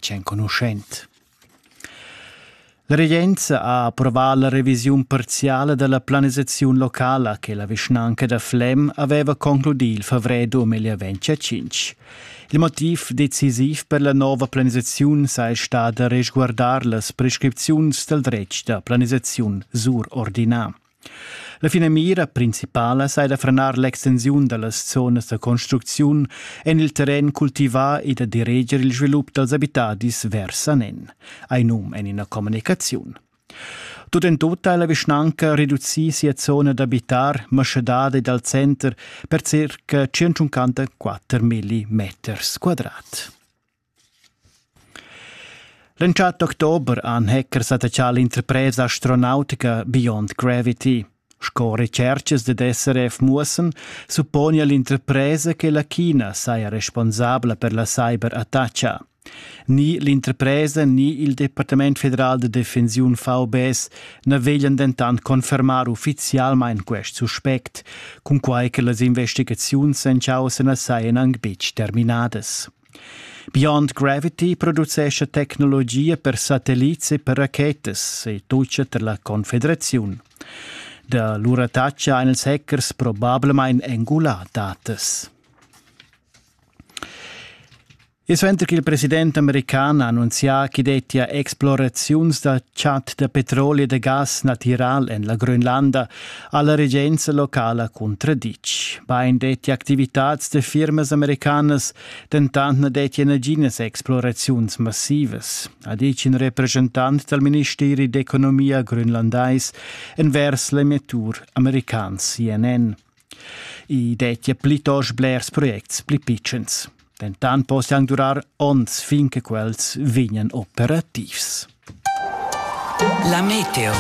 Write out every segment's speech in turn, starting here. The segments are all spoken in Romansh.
Ch'enconuschent. La regenza ha approvà la revisiun parziala dalla planisaziun locala che la vischnanca da Flem aveva concludì il favrer 2025. Il motiv decisiv per la nova planisaziun sei stada resguardar las prescripziuns dal dretg da planisaziun surordinà. La finamira principala sei da frenar l'extensiun dallas zonas da construcziun en il terren cultivà e da direger il svilup dals abitadis vers anen, ei num en ina communicaziun. Tut en tut ha la vischnanca reducì sia zona d'abitar maschedada dal center per circa 154 milli meters quadrat. L'entschatta october han hackers attachà l'interpresa astronautica Beyond Gravity. Sco recerchas dad SRF muossan, supponi l'interpresa che la China saja responsabla per la cyberattacca. Ni l'interpresa ni il Departament federal de defensiun VBS na veglian dentant confermar uffizialmain quest suspect, cunquai che las investigaziuns en causa na sajan anc betg terminadas. Beyond Gravity producescha tecnologia per satellits e per rachetas e tutscha tar la Confederaziun. Da lura tatscha ein ils hackers probablamain engulà datas. E suenter che il president american ha annunzià ch'i dettia exploraziuns da chat da petroli e da gas natiral en la Grönlanda, alla regenza locala contraditg. Bein detti activitads de firmas americanas, dentant ne detti naginas exploraziuns massivas, ha detg in representant dal Ministeri d'economia grönlandais envers l'emettur american CNN. I dettia plitost blers projects pli pitschens. Dentan possian durar onns fin che quels vegnan operativs. La meteo.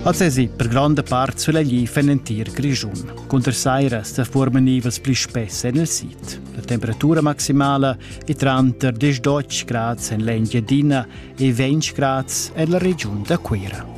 Az es i per gronda part sulegl en l'entir Grischun. Cunter saira sta forma nivels pli spess en il sit. La temperatura maximala è tranter 10 grads en l'Engiadina e 20 grads en la regiun da Cuira.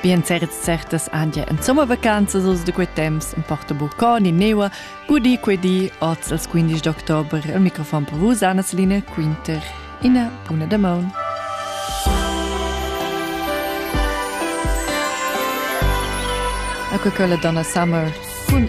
Bien certs certas andia en sommer vacanzas oz de quei temps en porta Burconi neua gudi quei di oz als 15 d'october al microfon per vos Anna Celine Quinter ina buna damaun. A quella donna Summer cun